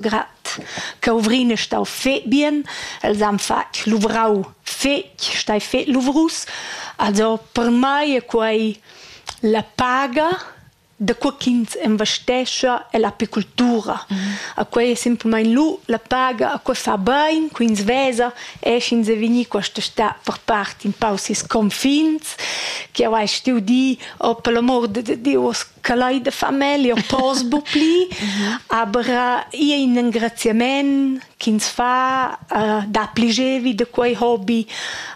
grat cauvrine stau fe bien els han fatg luvrau fetg stai fe luvrus also per mai è quei la paga da qua ch'ins investescha è l'apicultura. Mm -hmm. A quei è simplamain lu la paga, a quei fa bain, quins vesa, e sch'ins è vegni questa sta per part in paus is confins, che hai stiu di, oh per l'amor de Dios, che lai da famiglia pos bu pli, aber ia in engraziament ch'ins fa uh, dapli gevi da quei hobby.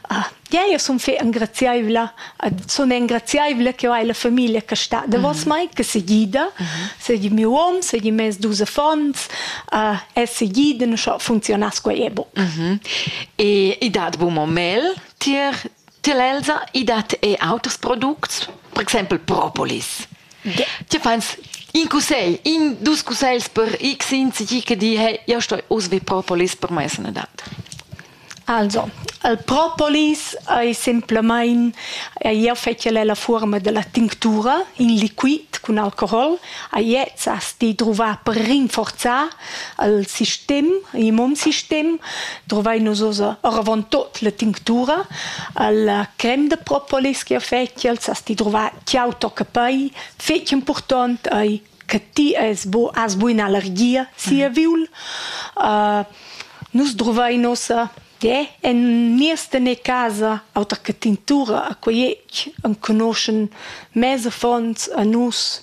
Uh, ja, io sun fe engraziaivla, uh, sun engraziaivla che ho hai la famiglia che sta davos mm. mai, che se gida, mm-hmm. segi miu hom, segi mes dus affons, uh, es se gida, non so funzionas quei e bo. Mm-hmm. E, e dat bu mo mel tier Tier l'Elsa i dat er auters products, per exempel propolis. Ja. Ti fans in cussegl, in dus cussegls per x insegi che di, hey, io sto usvi propolis per mai sanadad. Also, il propolis è semplamain, io fetg la forma della tinctura in liquid cun alcohol, e jetzt hast di druvà per rinforzar al sistem, i mon sistem, drovai nus oza oravant tot la tinctura, alla creme de propolis che feci al sasti drovai ciao tocca pei, feci important ai che ti es bo as buin allergia sia mhm. viul. Uh, nus drovai nosa de en nieste ne casa auter che tintura a quei enconoschen mese fonds a nus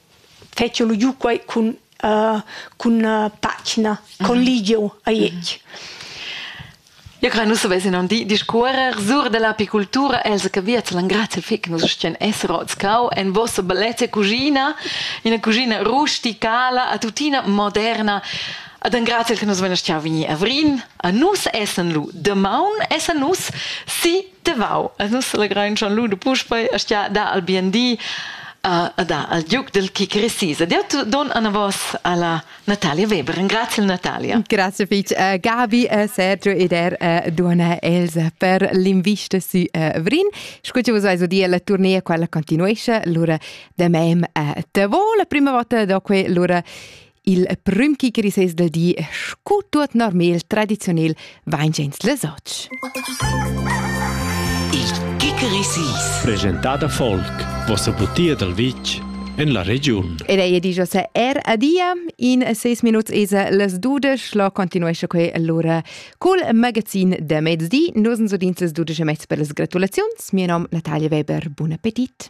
fetsch lu giu quei cun uh, cun uh, pagina con mhm. ligiu a iec. Io credo nus avessi non di discuorer sur dell'apicoltura els che via l'han grazie fic nus stien essero scau en vostra bellezza cucina in cucina rusticala a tutina moderna Ad en grazie che nus vena stiau vini a Vrin, a nus essen lu, de maun essen nus si Tevau, e nus legrain schon lu de puspei stia da al bien di e da al giuc del kick recise. Ed io don an a vos alla Natalia Weber. Grazie Natalia. Grazie fitch. Uh, Gabi, uh, Sergio ed er uh, Duana Elsa per l'invista su uh, Vrin. Scucci vos aiso di la tournea quella continuesce, lura de mem uh, te vo la prima volta doque lura Il prüm chi grisess del di es scu tuot normel tradiziunel vain gens les ots. Il Kikerisis Presentat a folk, vossa butia dal vitg en la regiun. Ed ei di Jose er adia. In seis minuts esa las dudesch. Lo continuesce quei allora col magazin de mezdi. Nos sudins las dudesch e mezz per las gratulaziuns. Mio nom Natalia Weber. Buon appetit.